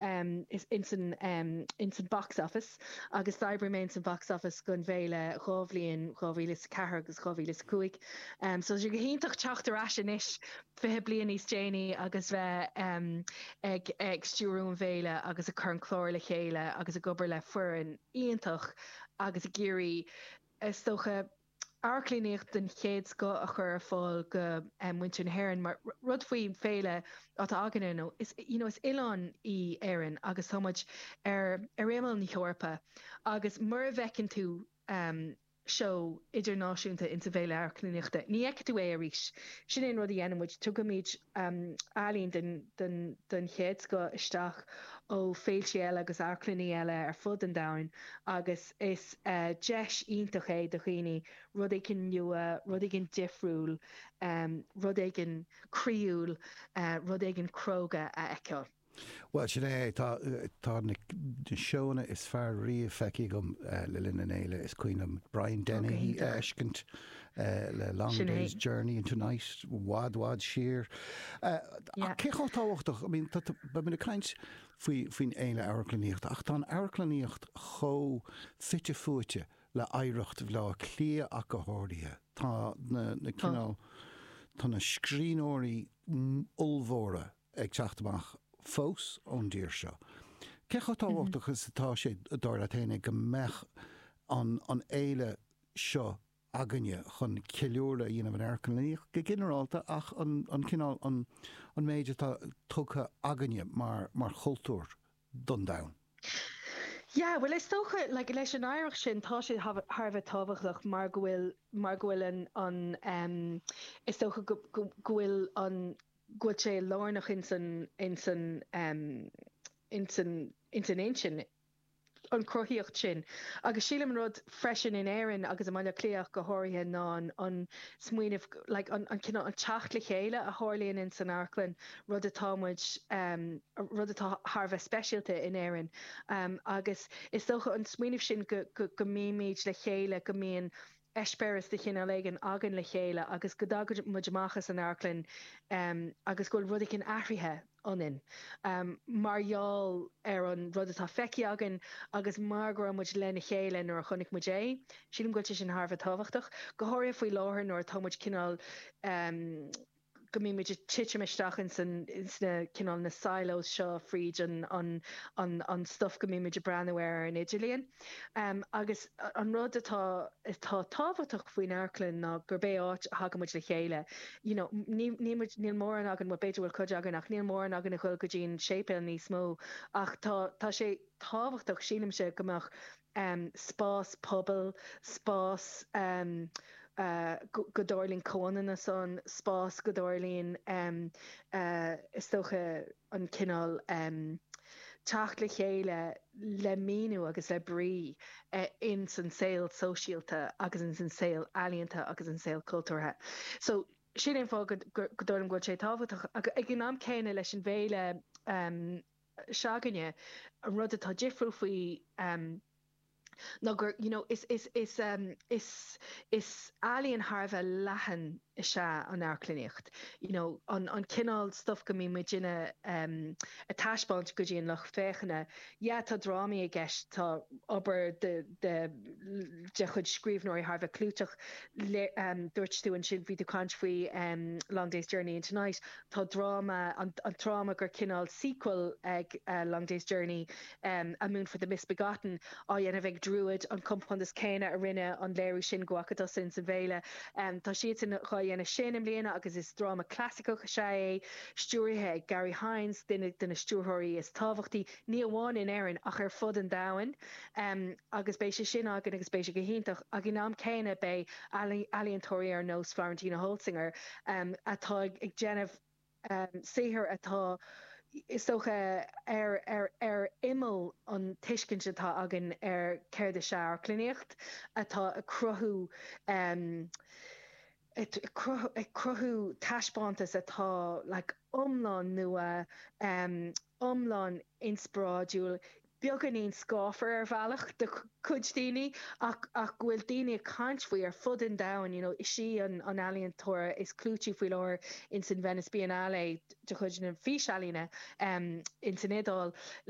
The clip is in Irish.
ins an box office agus d'oibrigh mé ins an box office gon bhFéile dhá bhliain, 2004 agus 2005, so tá sé go hiontach teacht ar ais anois 20 bliain níos déanaí agus bheith ag stiúradh an bhFéile agus ag cur an chlár le chéile agus ag obair le foireann iontach agus ag iarraidh is dócha, amharclannaíocht den chéad scoth a chur ar fáil do mhuintir na hÉireann mar rud faoi féile atá againne nó is you know is oileán í Éirinn agus tá muid ar ar imeall na hEorpa agus mura bhfeiceann tú seó idirnáisiúnta insa bhféile amharclannaíochta ní fheiceann tú é arís. Sin é an rud a dhéanaimid, tugaimid ealaín den chéad scoth isteach ó féiltí eile agus amharclanna eile ar fud an domhain agus is deis iontach é do dhaoine rud éigin nua, rud éigin difriúil, rud éigin croíúil, rud éigin cróga a fheiceáil. Bhuel, sin é é. Tá na seóanna is fearr riamh feicthe agam le linn an fhéile. Is cuimhin liom Brian Dennehy a fheiscint le Long Day's Journey into Night, i bhfad bhfad siar. Ach cé chomh tábhachtach, I mean, bímid ag caint faoin fhéile amharclannaíochta ach tá an amharclannaíocht chomh fite fuaite le hoidhreacht Bhaile Átha Cliath ach go háirithe. Tá na, cineál, tá na scríbhneoirí ollmhóra ag teacht amach fós ón dtír seo. Cé chomh tábhachtach is atá sé, dar leat féin, go mbeadh an fhéile seo againne chun ceiliúradh a dhéanamh ar amharclannaíocht go ginearálta ach an cineál, an méid atá tugtha againne mar chultúr don domhan? Yeah, bhuel is dócha, like, leis an oidhreacht sin tá sé thar a bheith tábhachtach mar go bhfuil, mar go bhfuil an, is dócha go bhfuil an, go bhfuil sé lárnach ins an intinn, an chruthaíocht sin. Agus sílim an rud freisin in Éirinn agus i mBaile Átha Cliath ach go háirithe ná an smaoineamh, like an cineál, an teacht le chéile a tharlaíonn ins an amharclann, rud atá muid, rud atá thar a bheith speisialta in Éirinn. Agus is dócha an smaoineamh sin go mbímid le chéile, go mbíonn eispéireas de chineál éigin againn le chéile agus go dtagann muid amach as an amharclann agus go bhfuil rud éigin athraithe ionainn mar gheall ar an rud atá feicthe againn agus mar go raibh muid lena chéile nuair a chonaic muid é. Sílim go bhfuil sé sin thar a bheith tábhachtach, go háirithe faoi láthair nuair atá muid cineál. go mbímid ag titim isteach ins an, ins na, cineál na silos seo fríd an, an, an, an stuif go mbímid ag breathnú air ar an idirlíon. Agus an rud atá, atá tábhachtach faoin amharclann ná gurb é áit a thagann muid le chéile. You know, ní, níl muid, níl mórán againn, bhuel b'fhéidir go bhfuil cuid againn ach níl mórán againn a ghoil go dtí an séipéal níos mó ach tá, tá sé tábhachtach, sílimse, go mbeadh, spás pobail, spás go dtarlaíonn comhionannas ann, spás go dtarlaíonn, is dócha, an cineál teacht le chéile le míniú agus le brí ins an saol sóisialta agus ins an saol ealaíonta agus an saol cultúrtha. So, sin é an fáth go dtarlaíonn go bhfuil sé tábhachtach. Ag an am céanna leis an bhféile. se'againne. An rud atá difriúil faoi ná gur, you know, is, is, is, is, is ealaíon thar a bheith leathan is ea an amharclannaíocht, you know, an, an cineál stuif go mbíonn muid in a, a taispeáint go dtí an lucht féachana. Yeah, tá drámaí i gceist, tá obair de, de, de chuid scríbhneoirí thar a bheith clúiteach, le, dúirt tú ansin, bhí tú ag caint faoi Long Day's Journey into Night, Tá dráma, an dráma gur cineál sequel ag A Long Day's Journey, A Moon for the Misbegotten, á dhéanamh ag Druid, an compántas céanna a rinne an léiriú sin go acu siúd sa bhféile. Tá siadsan dhá dhéanamh sin i mbliana agus is dráma clasaiceach is ea é, stiúirithe ag Garry Hynes, duine de na stiúrthóirí is tábhachtaí. ní amháin in Éirinn ach ar fud an domhain agus beidh sé sin againn agus beidh sé go hiontach ag an am céanna beidh ealaíontóirí ar nós Florentina Holzinger atá ag déanamh saothar atá is dócha ar ar ar imeall an tuiscint atá againn ar céard is ea amharclannaíocht atá ag cruthú ag cruthú taispeántas atá like iomlán nua, iomlán inspioráidiúil, beagáinín scáfar ar bhealach do chuid daoine ach go bhfuil daoine ag caint faoi ar fud an domhain, you know is í an ealaíontóir is clúití faoi láthair in san Venice Biennale de chuid na físealaíne in san Iodáil.